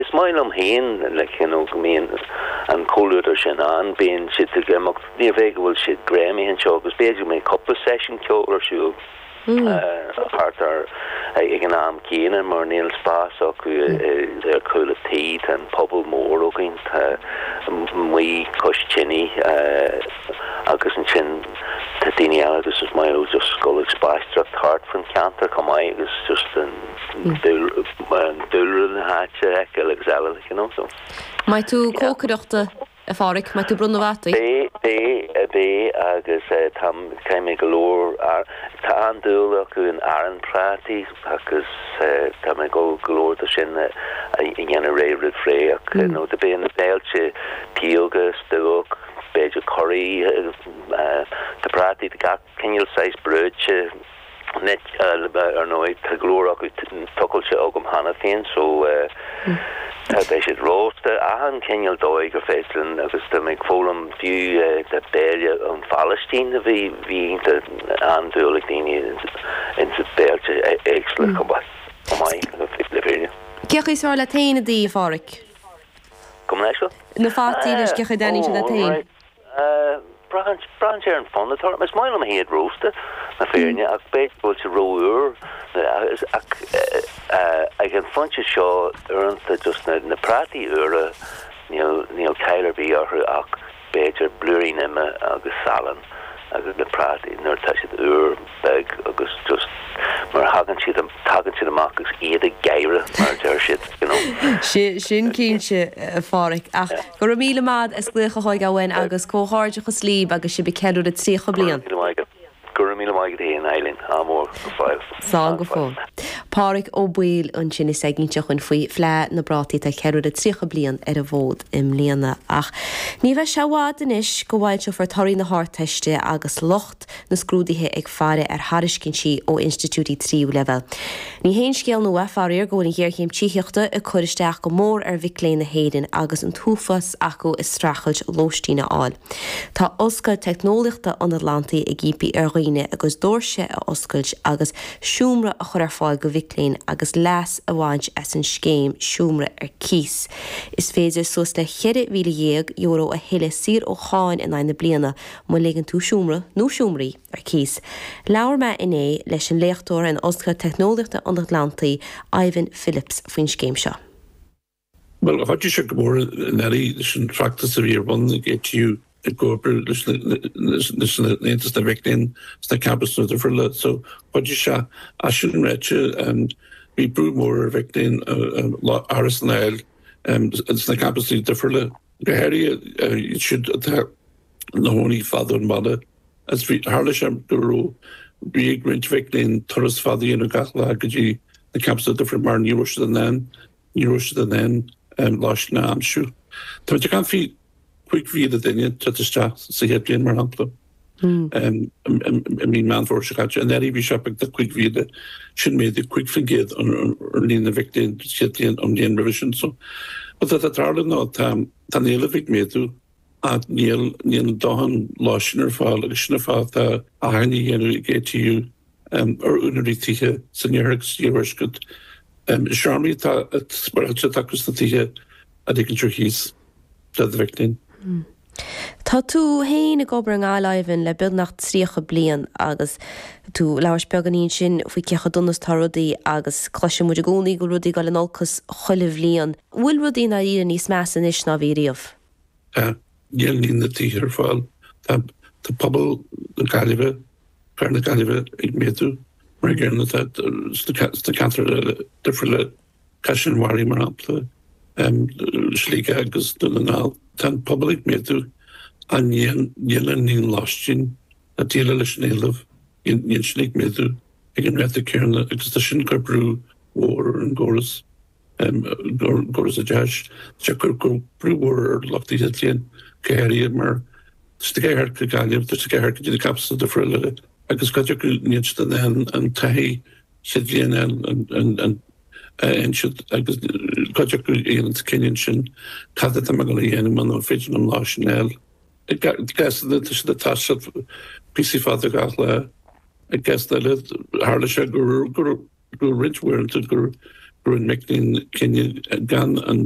Is maith liom féin le cinnt go mbíonn an comhluadar sin ann. Bíonn siad ag imeacht, ní gá go bhfuil siad greamaithe anseo, agus b'fhéidir go mbíonn cúpla seisiún ceoil ar siúl thart ar ag an am céanna mar níl spás acu ar chúl an tí, tá an puball mór againn, tá muid cois tine agus ansin tá daoine eile agus is maith leo just dul ag spaisteoireacht thart faoin cheantar chomh maith agus just an. Dúlra na háite a fheiceáil agus eile le cinn annso. An mbeidh tú ag cócaireacht a Phádraic, an mbeidh tú ag bronnadh na bhfataí. Beidh, beidh, beidh agus táim, caithfidh mé go leor ar, tá an-dúil acu in arán prátaí agus tá mé ag gabháil go leor de sin a dhéanamh ré roimh ré ach beidh na béilte pióga, stuác, b'fhéidir curry, tá prátaí de gach cineál saghas, brúite. Nic, Ar ndóigh tá go leor acu tochailte agam cheana féin so tá, beidh siad rósta, achan chineál dóigh gur féidir linn agus tá mé ag foghlaim fiú de bhéile ón Phalaistín a bhí, bhí ionta an-dúil ag daoine ins na béilte éagsúla chomh maith, chomh maith le fírinne. Cé chaoi is fearr leat féin iad a ithe, a Pháraic? Go mór mór na fataí leis, cé chaoi a dtaitníonn siad leat féin? Braitheann sé ar an fonn atá orm. Is maith liom iad rósta, le fírinne, ach b'fhéidir go bhfuil siad ró-úr. Ach ag an phointe seo, uaireanta just na prátaí úra, níl caill ar bith orthu ach b'fhéidir blúirín ime agus salann agus na prátaí nuair atá siad úr. beag agus just mar a thagann siad, tagann siad amach agus iad ag gáire mar a deir siad, you know. Sin cinnte, a Pháraic. Ach go raibh míle maith as glaoch a thógáil uainn agus comhghairdeachas líb agus sibh ag ceiliúradh 30 bliain. Go raibh míle maith agat, go raibh míle maith agat a Sheáin Eileen, adh mór, go fóill, Slán go fóill. Páraic Ó Baoill ansin is ag inse dúinn faoi Fhleadh na bPrátaí atá ag ceiliúradh 30 bliain ar an bhfód i mbliana. Ach ní bheidh sé i bhfad anois go bhfoilseofar torthaí na hArdteiste agus lucht. na scrúduithe ag faire ar thairiscintí ó institiúidí tríú leibhéal. Ní haon scéal nua, faraor, go bhfuil an ghéarchéim tithíochta ag cur isteach go mór ar mhic léinn na hÉireann agus an t-uafás acu ag streachailt lóistín a fháil. Tá Ollscoil Teicneolaíochta an Atlantaigh ag impí ar dhaoine a gcuid doirse a oscailt agus seomra a chur ar fáil do mhic léinn agus leas a bhaint as an scéim seomra ar cíos. Is féidir suas le €14,000 a thuilleadh saor ó cháin in aghaidh na bliana Má ligeann tú seomra nó seomraí ar cíos, labhair mé inné leis an léachtóir in Ollscoil Teicneolaíochta an Atlantaigh, Ivan Phillips, faoin scéim seo. Bhuel, chuidigh sé go mór i ndáiríre leis an feachtas a bhí ar bun ag ATU i gcomhar leis an Aontas na Mic Léinn sna campusanna difriúla so chuidigh sé ach sin ráite bhí brú mór ar mhic léinn árasán a fháil sna campuses difriúla go háirithe iad siúd atá ina gcónaí i bhfad ón baile agus bhí, tharla sé go raibh, bhí ar roinnt mhic léinn turas fada a dhéanamh gach lá go dtí na campusanna difriúla mar ní raibh siad in ann, ní raibh siad in ann lóistín a aimsiú. Táimid ag caint faoi chúig mhíle duine ag teacht isteach sa chéad bhliain, mar shampla, i mí Meán Fómhair seo caite. Anuraidh bhí sé beagnach cúig mhíle, sin méadú cúig faoin gcéad ar líon na mhic léinn sa chéad bhliain ón mbliain roimhe sin. So, rud atá tarlaithe ná tá an éileamh ag méadú. Ach níl a ndóthain lóistín ar fáil agus sin an fáth atá achainí á dhéanamh ag ATU ar úinéirí tithe san Iarthar agus san Iarthuaisceart. Is seomraí atá spáráilte acu sna tithe a ligint ar cíos le do mhic léinn. Tá tú féin ag obair i nGaillimh, Ivan, le beagnach tríocha bliain agus tú ag labhairt beagáinín ansin faoi cé chomh dona is atá rudaí agus cloisimid i gcónaí go bhfuil rudaí ag dul in olcas chuile bhliain. bhfuil rudaí i ndáiríre níos measa anois ná bhí riamh? Tá. Níl líon na dtithe ar fáil. Tá pobal na Gaillimhe, cathair na Gaillimhe ag méadú mar an gcéanna sna ceantair eile difriúla, Caisleán an Bharraigh mar shampla, Sligeach agus Dún na nGall. Tá an pobal ag méadú ach níl an líon lóistín le déileáil leis an éileamh, níl sin ag méadú ag an ráta céanna agus tá sin ag cur brú mhór ar an gcóras. gur gur sa deis sé ag cur brú mhór ar lucht chéad bliana go háirithe mar is de ghearr go Gaillimh tá de ghearr go dtí na campusanna difriúla agus go dtí go ndéanann siad an an an taithí chéad bhliain an an an an a insint agus go dtí go dhéanann siad cinneadh ansin cad atá mé ag dul a dhéanamh man an féidir liom lóistín a fháil i ga i gas na tá siad atá siad píosa fada gach lá agus na le tharla sé gur gur go roinnt uaireanta gur rinne mic léinn cinneadh gan an.